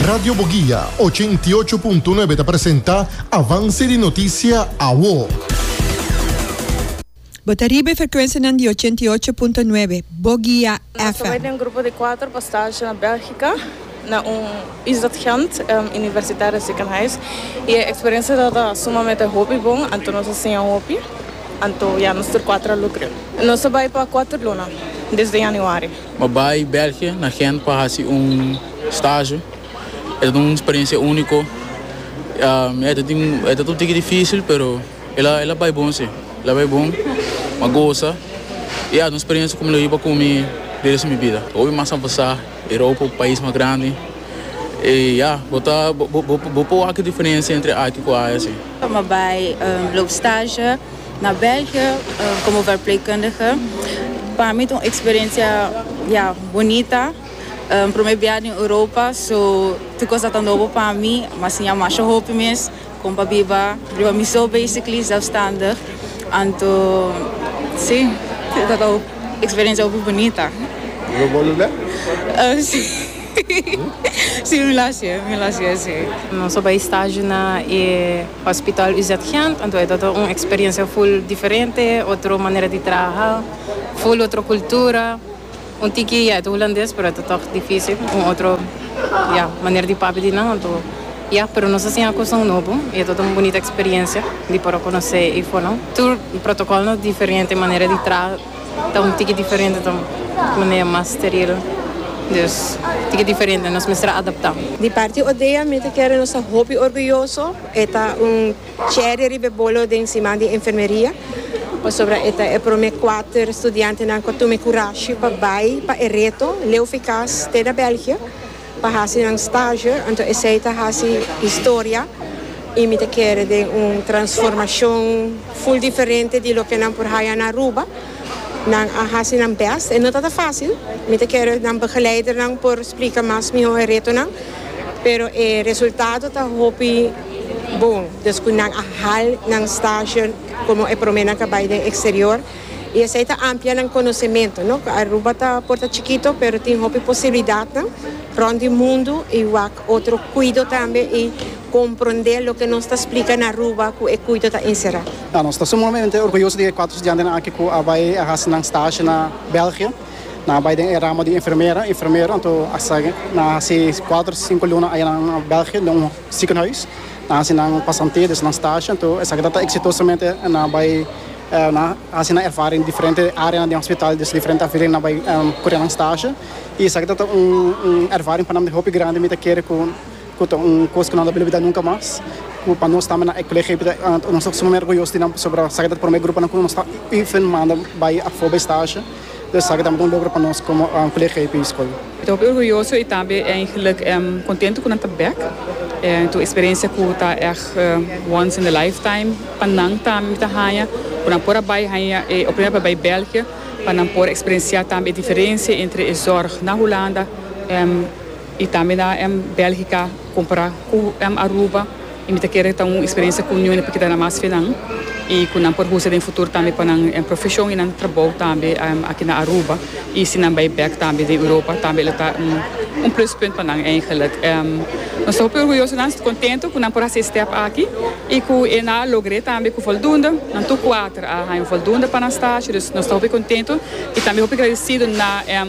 Radio Boguia, ochenta i ocho punto nuebe ta presenta Avance di Noticia Awo. Bo ta riba e frecuencianan di ochenta i ocho punto nuebe Boguia Nos ta bai den un grupo di cuater pa stage na Belgica, na un is dat Ghent, em, Universitaire Ziekenhuis. I e experiencia dat ta sumamente hopi bon, anto nos a siña hopi, anto ya nos tur cuater a look. Nos ta bai pa cuater luna, desde Januari. Mi a bai België, na Gent, pa haci un stage. E ta un experiencia unico. E ta tin, e ta un tiki dificil, pero el a, el a bai bon, si. El a bai bon. Mi a goza. Y ya, ta un experiencia cu mi lo hiba cu mi di resto mi bida. Bo bin mas avansa. Europa un pais mas grandi. Y ya, bo ta, bo, bo, bo por wak e diferencia entre aki cu aya, si. Mi a bai lo stage. Na België, komo verpleegkundige, pa mi ta un eksperensia, ya, bonita. Promé biaha den Europa, so tur kos dat ta nobo pa mi. Mi a siña masha hopi mes kon pa biba riba mi so, basically, zelfstandig. Anto, sí, dat ta un eksperensia hopi bonita. Lo bolu lek? Sí, sí, mi lo hasié, mi lo hasié, sí. Nos a bai stagio na e. Hospital UZ Gent, anto e tabata un experiencia full diferente, otro manera di traha, full otro cultura, un tiki ya e ta Hulandes pero e ta tog dificil, un otro ya manera di papia di nan, anto ya pero nos a siña cosnan nobo y e tabata un bunita experiencia di por a conoce Ifonan, tur protocol nos diferente, manera di traha. ta un tiki diferente ta un manera mas steril dus tiki diferente nos mester a adapta. Di parti Odea mi ta kere nos ta hopi orguyoso e ta un cherry riba e bolo den siman di enfermeria pasobra e ta e prome kuater studiantenan ku a tuma e kurashi pa bai pa e reto leu fikas te na Belgia Pa hasi nan stage, anto esei ta hasi historia y mi ta kere den un transformacion full diferente di loke nan por haya na Aruba. Nan a hasi nan best, e no ta ta facil, mi ta kere nan begeleidernan por splica mas miho e retonan, pero e resultado ta hopi bon descu nan a hal nan stage como e prome nan ta bay den exterior. y esey ta amplia nan conocemento, no? Aruba ta por ta chikito pero tin hopi posibilidadnan rond di mundo y wak otro cuido tambe y comprende loke nos ta splica na Aruba cu e cuido ta encera. Ta, nos ta sumamente orguyoso di e cuatro studiantenan aki cu a bay a haci nan stage na België. Nan a bay den e ramo di enfermera, enfermero, anto a sa ke nan a haci cuatro, cinco luna ayanan na België den un ziekenhuis. Nan a haci nan pasantia, dus nan stage, anto esaki ta ta exitosamente nan a bay. Nan a hasi nan ervaring diferente áreanan den hospital, dus diferente afdeling nan bai kura nan stasje. I esaki ta ta un ervaring pa nan di hopi grandi, mi ta kere ku ta un kos ku nan no a bilibidá nunka mas, ku pa nos tambe nan ek colegio ei ta nos ta suma orguyoso di nan pasobra esaki ta ta promé gruponan ku nos ta even manda bai afó bai stasje. Lo esaki tambe ta un logro pa nos como Colegio High View School. Mi ta hopi orguyoso y tambe en geluk en contento cu nan ta bek. Entu experiencia cu ta echt once in the lifetime pa nan tambe mi ta haya cu nan por a bay haya e oportunidad pa bay België pa nan por experiencia tambe e diferencia entre e zorg na Hulanda en. I tambe na M Belgica compara cu M Aruba y mi ta kere ta un experiencia cu ñu'e p'e keda mas finan y cu nan por usa den futuro tambe pa nan profesion y nan trabou tambe aki na Aruba y si nan bay bek tambe den Europa tambe lo ta un plus punt pa nan eigenlijk. Nos ta hopi orguyoso nan contento cu nan por haci e step aki y cu e nan a logr'e tambe cu voldoende, nan tur cuater a haña voldoende pa nan stage, dus nos ta hopi contento y tambe hopi gradecido na M.